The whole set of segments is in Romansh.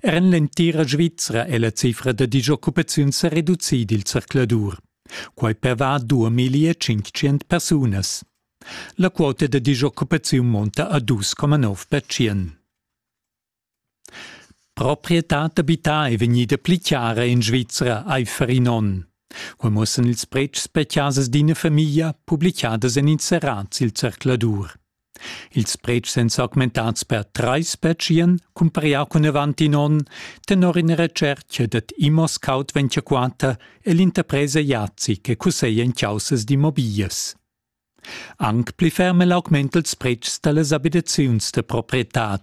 Er en l'entira Svizra è la cifra da disoccupaziun sa reducida il zercladur. Quai perva 2500 persunas. La quota da disoccupaziun monta a 2,9%. Proprietad d'abità è vegnida pli chiara in Svizra aifer in onn. Quai muossan ils pretschs per chasas d'ina famiglia publicadas en inserats il zercladur. Ils pretschs èn s'augmentads per trais pertschien, cumparià cun avant in onn, tenor ina retschertga dad ImmoScout 24 e l'interpresa Jazi che cusseglia en chaussas d'immobiglias. Anc pli ferm è l'augment dals pretschs da las abitaziuns da proprietad.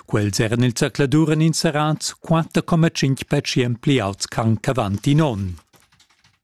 Quels eran il zercladur en inserats 4,5% pli auts ch'anc avant in onn.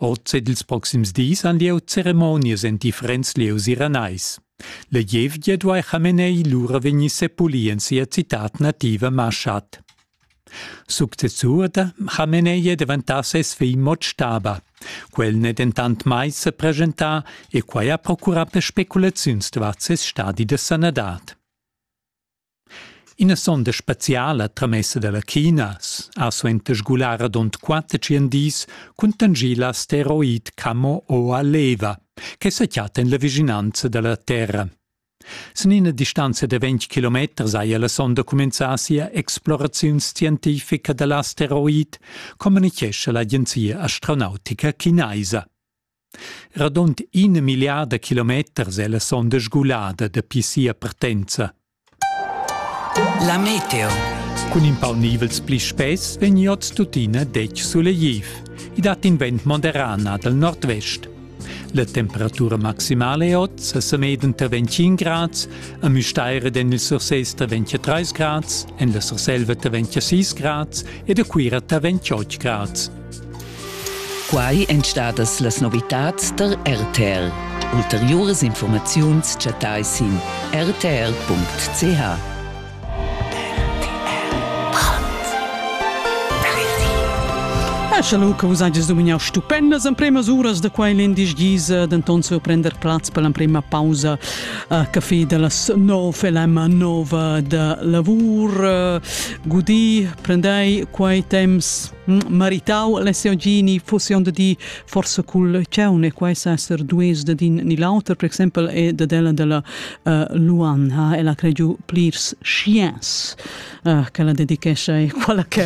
Oz ed ils proxims dis han lieu ceremonias en differents lieus iranais. La gievgia duai Khamenei lura vegnir sepulì en sia citad nativa Mashhad. Successur da Khamenei è deventà ses figl Motstaba. Quel n'è dentant mai sa preschentà e quai ha procurà per speculaziuns davart ses stadi da sanadad. Ina sonda speciala tramessa dalla Chinas ha suenter sgular radund quater tschien dis cuntanschì la asteroid Camo Oa Leva che sa chatta en la vischinanza dalla Terra. Sin ina distanza da ventg kilometers haja la sonda cumenzà sia exploraziun scientifica da l'asteroid, communichescha l'agenzia astronautica chinaisa. Radund ina milliarda kilometers è la sonda sgulada dapi sia partenza. La meteo. Cun in pau nivels pli spess vegni oz tuttina detg sulegliv. I dat in vent moderana dal nordvest. La temperatura maximala è oz a Sameden tra 25 grads, a Müstair ed en il Surses tra 23 grads, en la Surselva tra 26 grads ed a Cuira tra 28 grads. Quai èn stadas las novitads tar RTR. Ulteriuras informaziuns chattai sin rtr.ch. Eschelu che vus hajas dumignau stupendas empremas uras da quai l'indisch gisa, denton surprender plaz per l'emprema pausa uh, café de las nov LM nova de lavur. Uh, gudi, prendei quei temps maritau l'SOG fosse onda di forse cul ciaun e quai sa ser dues da din ni l'auter per exempel è da della della uh, Luan ha ella cregiu plirs sciens uh, che la dedicescia e quella che